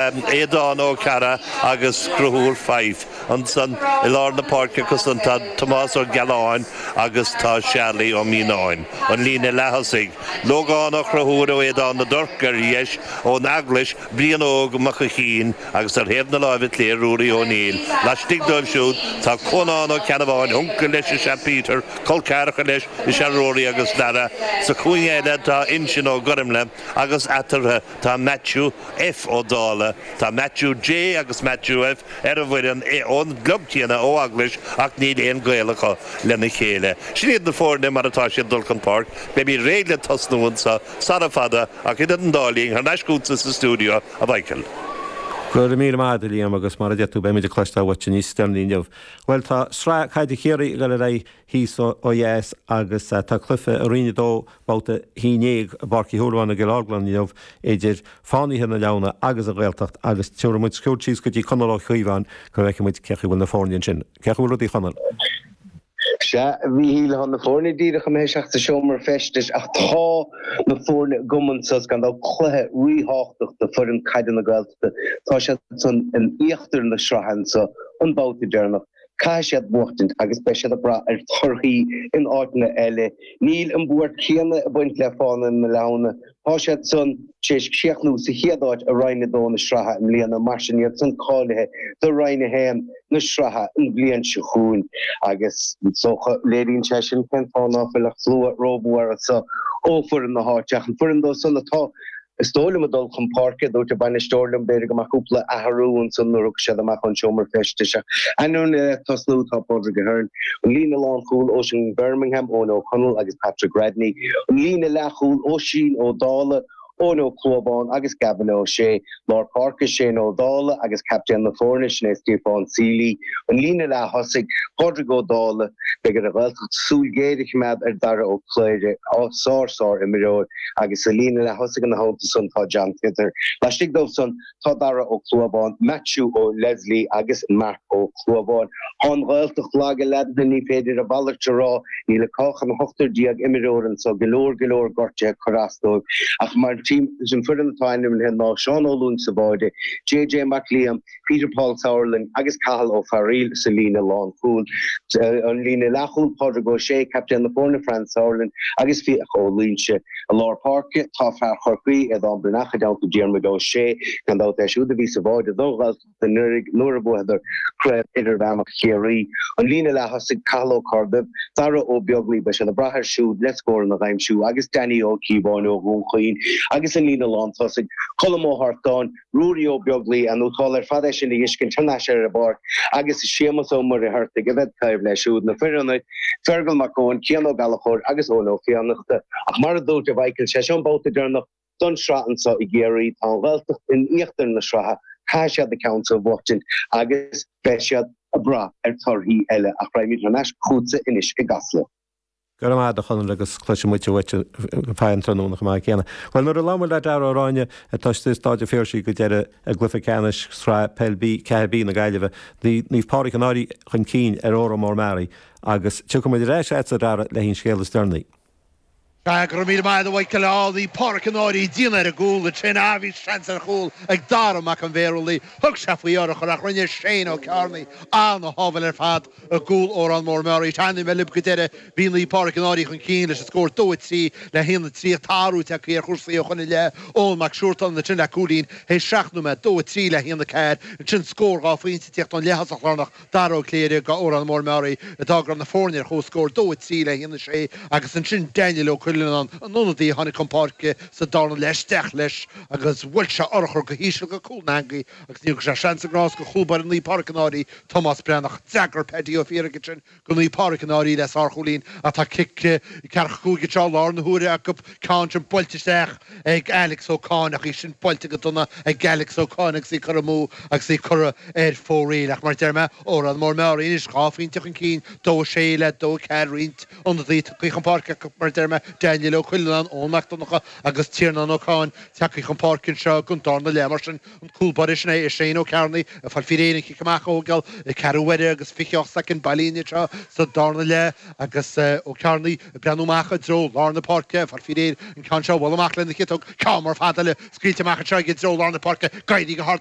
Aodán Ó Cearra agus Conchúr Fyfe ansan i lár na páirce acu san tá Tomás Ó Gealáin agus tá Searlaí Ó Mianáin an líne leath-thosaigh. Lógán Ó Conchúir ó Éadan na dTorc ar dheis, ón Eaglais, Brian Óg Mac a Chinn agus ar thaobh na láimhe clé Ruairí Ó Néill. Laistigh dóibh siúd tá Cónán Ó Ceannabháin, uncail leis is ea Peter, col ceathracha leis is ea Ruairí agus Darragh. Sa chúinne eile tá Uinseann Ó Gormlaigh agus eatarthu, Tá Matthew F. Ó Dála, tá Matthew J. agus Matthew F. ar an bhfoireann ón gclub céanna ó Eaglais ach níl aon gaol acu lena chéile. Sin iad na foirne mar atá siad dul chun páirc. Beimid réidh le tosnú anseo sara fada ach idir an dá linn, thar n-ais chugatsa sa stiúideo, a Mhichíl. Go raibh míle maith a'd, a Liam, agus mar a deir tú, beimid ag cloisteáil uait níos deireanaí inniu. Bhuel, tá sraith caide Chiarraí ag dul ar aghaidh, thíos ó dheas agus tá cluiche i Roinn 2, Babhta 11 i bPáirc Uí Shúilleabháin i gCill Orglan inniu idir Fánaithe na Leamhna agus An Ghaeltacht agus tabharfaidh muid cuairt síos go dtí Conall Ó Cíobháin go bhfeicfidh muid cé chaoi bhfuil na foirne ansin. Cé chaoi bhfuil rudaí, a Chonaill? Sea, a Mhíchíl, tá na foirne díreach imithe isteach sa seomra feistis ach tá na foirne agam anso. Is gan dabht, cluiche ríthábhachtach do foireann caide na Gaeltachta. Tá siad san in íochtar na sraithe anseo, an babhta deireanach. Caithfidh siad buachtaint agus beidh siad ag brath ar thorthaí in áiteanna eile. Níl an bhuairt chéanna ag baint le Fánaithe na Leamhna. Tá siad san tar éis críochnú sa chéad áit i Roinn 2 na sraithe i mbliana, mar sin iad san cáilithe do Roinn 1 na sraithe an bhliain seo chugainn agus is dócha léiríonn sé sin cén fáth ná fuil an slua rómhór anso ó foireann na háite ach an foireann dóibh san atá Is dóigh liom a dul chun páirce, a dúirt an bainisteoir liom b'fhéidir go mbeadh cúpla athrú ansan nuair a thiocfaidh siad amach ón seomra feistis ach ainmnithe le tosnú tá Pádraig Ahern, an líne lánchúil, Oisín Birmingham, Eoin Ó Conaill agus Patrick Radney, an líne leathchúil, Oisín Ó Dálaigh, Eoin Ó Clúmháin agus Gavin Ó Sé, lár páirce, Shane Ó Dálaigh agus captaen na foirne, sin é Stiofán Sealy, an líne leath-thosaigh, Pádraig Ó Dálaigh. Beidh ar an Ghaeltacht súil ghéar a choimeád ar Dhara Ó Cléirigh, sár, sár imreoir. agus sa líne leath-thosaigh ina theannta san tá John Tyther. Laistigh dóibh san tá Darragh Ó Clúmháin, Maitiú Ó Leslie agus Marc Ó Clúmháin. Tá an Ghaeltacht lag i leaideanna, ní féidir a mhalairt a rá. Níl acu ach an t-ochtar déag imreoir anso, go leor, go leor gortuithe ag cur as dóibh, ach maidir leis an foireann atá ainmnithe ná Seán Ó Lúing sa bháide, JJ Mac Liam, Peter Paul Sauerland agus Cathal Ó Fearaíl sa líne lánchúil. Sa líne leathchúil, Pádraig Ó Sé, captaen na foirne, Franz Sauerland agus Fiach Ó Loingsigh. I lár páirce, tá fear Chorcaí, Aodhán Breathnach, i dteannta Diarmuid Ó Sé. Gan dabht é siúd a bhí sa bháide don Ghaeltacht anuraidh nuair a bhuadar Craobh Idirmheánach Chiarraí. An líne leath-thosaigh, Cathal Ó Corrduibh, Daire Ó Beaglaoi, beidh siad ag brath air siúd le scóranna a aimsiú agus Danny Ó Cíobháin ó Dhún Chaoin agus an líne lántosaigh, Colm Ó hArtáin, Ruairí Ó Beaglaoi, An-ardú ar fad é sin a fheiscint thar n-ais ar an bpáirc agus Séamus Ó Muircheartaigh a bheith taobh leis siúd, na fir ionaid, Fergal Mac Eoin, Cian Ó Gallachóir agus Eoin Ó Fiannachta. Ach mar a dúirt Mhichael, sé seo an babhta deireanach don sraith anseo i gCiarraí. Tá an Ghaeltacht in íochtar na sraithe, caithfidh siad an ceann seo a bhuaictint agus beidh siad ag brath ar torthaí eile ach raghaimid thar n-ais chughatsa anois i gCasla. Go raibh maith agat a Chonaill agus cloisfidh muid uait ar fad an tráthnóna chomh maith céanna. Bhuel nuair a labhair muid le Dara Ó Ráinne atá istigh i Stáid an Phiarsaigh go deireadh i gCluiche Ceannais Sraith Peil B 4B na Gaillimhe bhí Naomh Pádraig an Fhairche chun cinn ar Órán Mór Meáraí agus tiocfaidh muid ar ais agatsa Dara le haon scéal is deireanaí. Tá go raibh míle maith agat a Mhichael. Naomh Páraic an Fhairche dian ar an gcúl, le Shane Eye. Bhí seans ar chúl ag Dara Mac an Bhéarúlaí. Thug sé faoi urchar ach rinne Shane Ó Cearnaigh an-shábháil ar fad i gcúl Órán Mór Meáraí. Is nuair a labhair mé libh go deireadh bhí Naomh Páraic an Fhairche chun cinn leis an scór dó 3 le haon a trí tá athrú tagthaí ar chúrsaí ó shoin i leith. Eoghan Mac Siúrtáin ansin le cúilín théis seacht nóiméad dó 3 le haon a ceathair ansin scór dhá phointe ag tíocht ón leaththosach lárnach Dara Ó Cléirigh, go Órán Mór Meáraí, a d'fhág na foirne ar chomhscór, 2, 3 le 1, 6, agus ansin Daniel Ó Cuilleanán, an ionadaí a tháinig chun páirce sa dara leath isteach leis agus bhuail sé urchar go híseal go cúl na heangaí agus ní thug sé seans ná grás go cúl báire Naomh Pádraig an Fhairche, Tomás Breathnach. D'fhreagair Paddy Ó Fiathaigh ansin go Naomh Pádraig an Fhairche le sárchúilín ach tá cic ceathracha cúig anseo ar ala na huaire acu ceann sin buailte isteach ag Alex Ó Cáin ach í sin buailte go dona ag Alex Ó Cáin agus í curtha amú agus í curtha ar fóraoil. Ach mar a deir mé, Órán Mór Meáraí anois, dhá phointe chun cinn, dó a sé le dó a ceathair roinnt ionadaí tagtha chun páirce acu, mar a deir mé, Daniel Ó Cuilleanáin, Eoin Mac Donnacha agus Tiarnán Ó Cáin tagtha chun páirce anseo don darna leath mar sin. An cúl báire sin é Shane Ó Cearnaigh ag fáil faoi réir don chic amach ó gheall ceathrú uaire agus 28 soicind bailithe linn anseo sa darna leath agus Ó Cearnaigh ag breathnú amach i dtreo lár na páirce ag fáil faoi réir an ceann seo a bhualadh amach lena chiotóg ceann mór fada eile scaoilte amach anseo aige i dtreo lár na páirce d'éirigh go hard